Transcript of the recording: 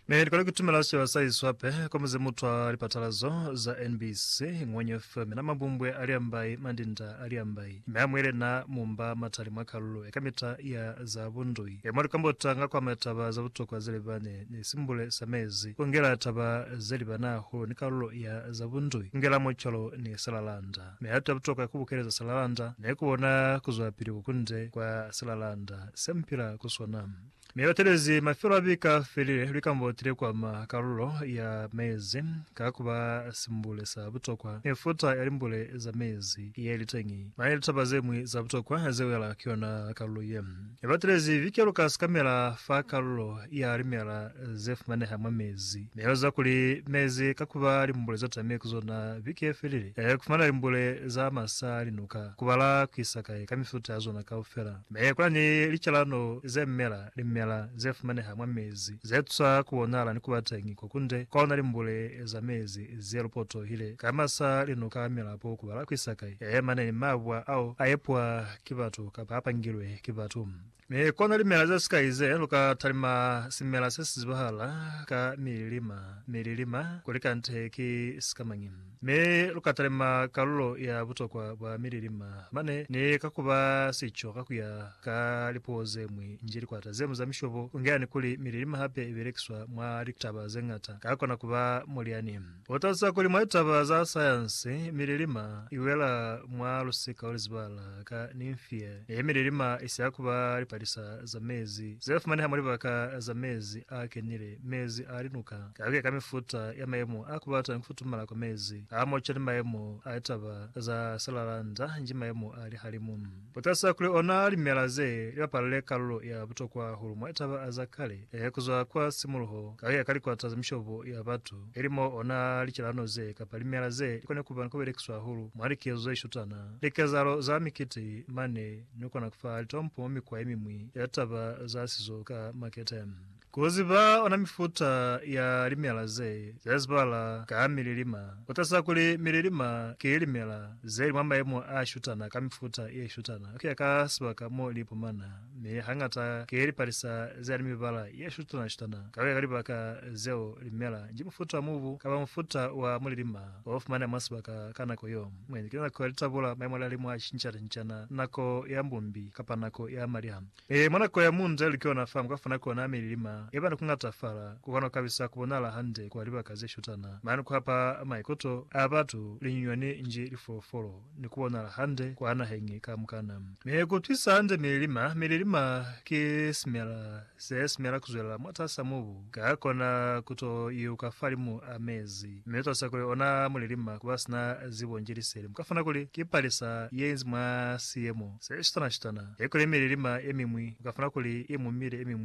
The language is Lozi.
Ne likole kutumela sicaba sa iswape kwa muze mutwa lipatalazo za NBC Ngwenye FM na mabumbwe a liambai mandinda a liambai me a mwile na mumba matali mwa kalulo eka mita ya za bundui e mwa likambota nga kwama taba za butokwa ze libane ni simbule sa mezi ku ngela taba ze libana hahulu ni kalulo ya za bundui ku ngela mucwalo ni salalanda. Mi hata butoka ku bukeleza silalanda ne ku bona ku zwelapili ko kunde kwa silalanda se mupila ku sona. Mi batelezi mafelo a bika felile likamboti le kwama kalulo ya mezi ka ku ba simbule sa butokwa. Mifuta ya limbule za mezi ye li teñi, mane litaba ze ñwi za butokwa ze wela ku yona kalulo ye. Ne ba telezi vike lu ka sikamela fa kalulo ya limela ze fumaneha mwa mezi. Ne lu eza kuli mezi ka kuba limbule za tame ku zona vike ye felile, ku fumana limbule za masa, linuka, ku bala ku isa kai ka mifuta ya zona kaufela. Mi kuna ni licalano ze mela, limela ze fumaneha mwa mezi, ze tusa ku bonahala ni ku ba teñi ko kunde kwa ona limbule za mezi ze lu potohile ka masa, linuka, milapo, ku bala ku isa kai, mane ni mabwa ao a epwa ki batu, kapa a pangilwe ki batu. Mi ku na limela ze sikai ze lu ka talima simela se si zibahala ka mililima, mililima, ku li kante ki sikamañi. Mi lu ka talima kalulo ya butokwa bwa mililima mane, ni ka ku ba sico ka ku ya ka lipuo ze ñwi nji likwata ze ñwi za mishobo, ku ngeani kuli mililima hape i belekiswa mwa litaba ze ñata, ka kona ku ba mulyani. U talusa kuli mwa litaba za sayansi, mililima i wela mwa lusika o luzibala ka Nymphaea. Ye mililima i siya ku ba lipalisa za mezi ze fumaneha mwa libaka za mezi a kenile, mezi a linuka, ka ku ya ka mifuta ya mayemo a ku bata ni ku futumala kwa mezi a moca ni mayemo a litaba za silalanda nji mayemo a lihalimu. Butasa kuli ona limela ze li bapalile kalulo ya butokwa hulu mwa taba za kale kuzwa kwa simuluho kakuya ka likwata za mishobo ya batu, ili mo ona licalano ze kapa limela ze li kona kuba ni kubelekiswa hahulu mwa likezo ze shutana, likezahalo za mikiti, mane ni kona kufa litompo mwa mikwa yemimwi ya taba za sizo ka makete. Ku ziba ona mifuta ya limela ze ze zibala ka mililima ku taza kuli mililima ki limela ze li mwa mayemo a shutana ka mifuta ye shutana ku ya ka sibaka mo li ipumana, mi hañata ki lipalisa ze ni mibala ye shutana-shutana ka ku ya ka libaka zeo li mela nji. Mufuta wa mubu kapa mufuta wa mulilima o fumaneha mwa sibaka ka nako yo mwendi ki nako ya litabula, mayemo a lihalimu a cinca-cincana, nako ya mbumbi kapa nako ya maliha. Ee, mwa nako ya munda ya likona fa muka funa kona mililima ye bana kungatafala, ku kona ku kabisa ku bonala hande kwa libaka ze shutana mane ku hapa maikoto a batu, linyinyani nji lifolofolo, ni ku bonala hande kwa naheñi kamukana. Mi ku utwisa hande mililima, mililima ki simela se simela ku zwelela mwatas'a mubu. Ka kona ku to iuka falimu a mezi, mi u to sa kuli ona mulilima ku ba sina zibo nji liseli. Mu ka funa kuli ki palisa ye inzi mwa siyemo se shutana-shutana, ye kuli mililima ye miñwi mu ka funa kuli i mu mile, ye miñwi.